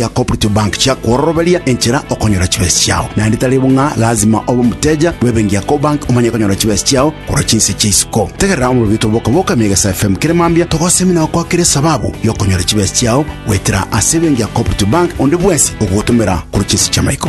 ya Cooperative Bank chiakwororoberia enchera okonyora chibesa chiao. Naende tari bo ng'a lazima obe omoteja bw'ebenki ya Cobank omanye konyora chibesa chiao korwa chinse chia isiko. Tegerera omorobio twa Boka Boka Megesa FM kere mambia togosemi na gokwakera esababu y'okonyora chibesa chiao goetera ase ebenki ya Cooperative Bank onde bwensi ogogotomera korwa chinse chi'amaiko.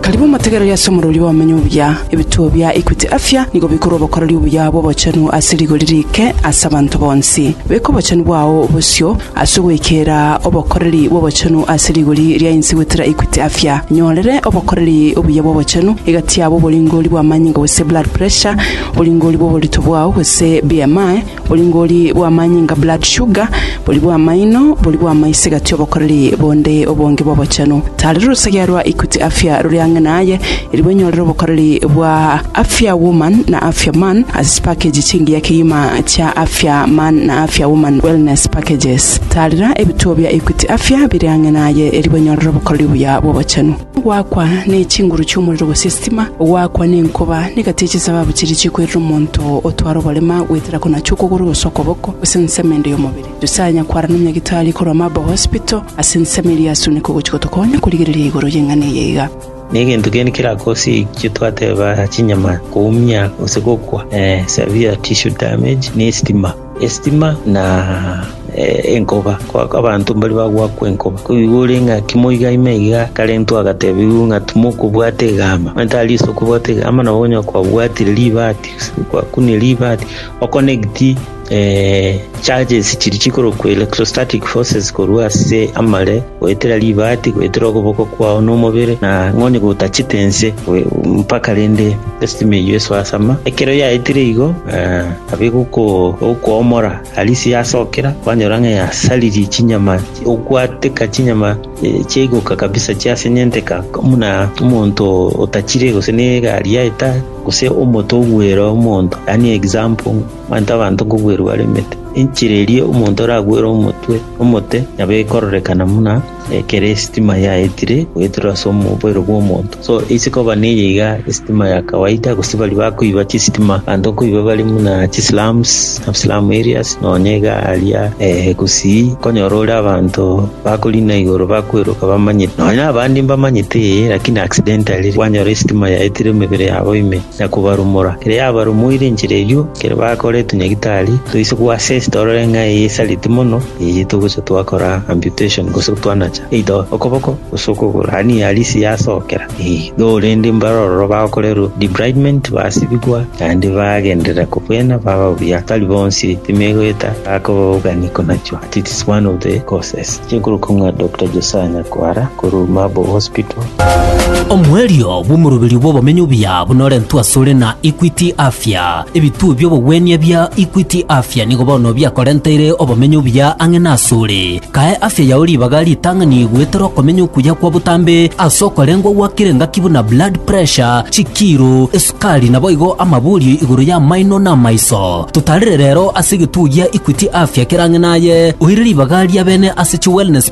Karibu motegereri ase omorori bw'abamenyi obuya. Ebituo bia Equity Afya nigo bikorwa obokoreri obuya bw'obochenu ase rigori riike ase abanto bonsi. Beka obochenu bwao bosio ase ogoikera obokoreri bw'obochenu ase rigori ria inse goetera Equity Afya. Nyorere obokoreri obuya bw'obochenu egati yabo oboringori bw'amanyinga gose blood pressure, oboringori bw'oborito bwao gose BMI, Boringori bw'amanyinga, blood sugar, bori bw'amaino, bori bw'amaiso egati obokoreri bonde obonge bw'obochenu. Taarera orosegea rwa Equity Afya rore ang'e naye erigwa enyorere obokoreri bwa Afya Woman na Afya Man ase chipakeji chingiya kegima chia Afya Man na Afya Woman Wellness Packages. Taarera ebituo bia Equity Afya bire ang'e naye erigwa enyorere obokoreri obuya bw'obochenu. Goakwa ne chinguru chi'omorero gose esitima, goakwa ne nkoba, na egati ye chisababu chiria chikwerire omonto otware oborema goetera konacha okogoro gose okoboko, gose ensemo ende y'omobere. Nyasae anyakwarana omonyagitari korwa Marble Hospital ase ensemo eria yasunekwa gochia gotokonya korigereria igoro y'eng'ana eye iga. Negento gani kerakosikwe twateba chinyama koumia gose gokwa? Severe tissue damage ne esitima. Esitima na enkoba, abanto mbaria bagoakwa enkoba. Koigwa ore ng'a kimo iga ime iga akarentwa agatebigwa ng'a timokobwata egamba, onye tari ase okobwata egamba nabo onye kwabwatire ribati gose kwakunia ribati o connect charges chiria chikorokwa electrostatic forces korwa ase amare goetera ribati goetera okoboko kwao na omobere na onye gotachete nse mpaka rende esitima eyio esoe ase ama. Ekero yaetire igo. Abe gokoomora Alice yasokera, kwanyora ng'a yasaririe chinyama ogwateka chinyama chiaigoka kabisa chiasenyenteka buna omonto otachire gose negari yaye tari gose omote ogwere omonto yaani example omanyete abanto nkogwerwa bare emete enchera eria omonto oragwere omotwe omote nabo ekororekana buna Ekero esitima yaetire goeterwa ase oboiro bw'omonto, so eise koba neye iga esitima ya kawaida, gose baria bakoiba chisitima abanto nkoiba bare buna chislums, slum areas, nonya iga aria eh, gusii konyora ore abanto bakorina igoro bakweroka bamanyete, nonya abande mbamanyete eh, lakini accidentally kwanyora esitima yaetire emebere yabo ime na kobarumora. Ekero yabarumoire enchera eyio, ekero bakora etunyagitari, toise goassess torore ng'a eye esareti mono, Eye togocha twakora amputation gose twanacha eidoo, okoboko, gose okogoro, ani halisi yasokera? Igo rende mbare ororo bagokorerwa debridement, basibigwa, naende bagenderera kobwena baba buya. Tari bonsi timegoeta bakobogania konachwa, but it is one of the causes. Inche nkorokwa ng'a Doctor Josiah Nyakundi. Kwara korwa Marble Hospital. Omoerio bw'omoroberi bw'obomenyo obuya buna orentwe asore na Equity Afya. Ebituo bi'obogwenia bia Equity Afya nigo bono biakorenteire obomenyo obuya ang'e nasore. Kae afya yao ribaga ritang'ani goetera okomenya okuya kwa botambe ase okorengwa gwakire ngaki buna blood pressure, chikiiro, esukari naboigo amaborio igoro y'amaino na amaiso. Totarire rero ase egetuo gia Equity Afya kere ang'e naye oire ribaga riabene ase chi wellness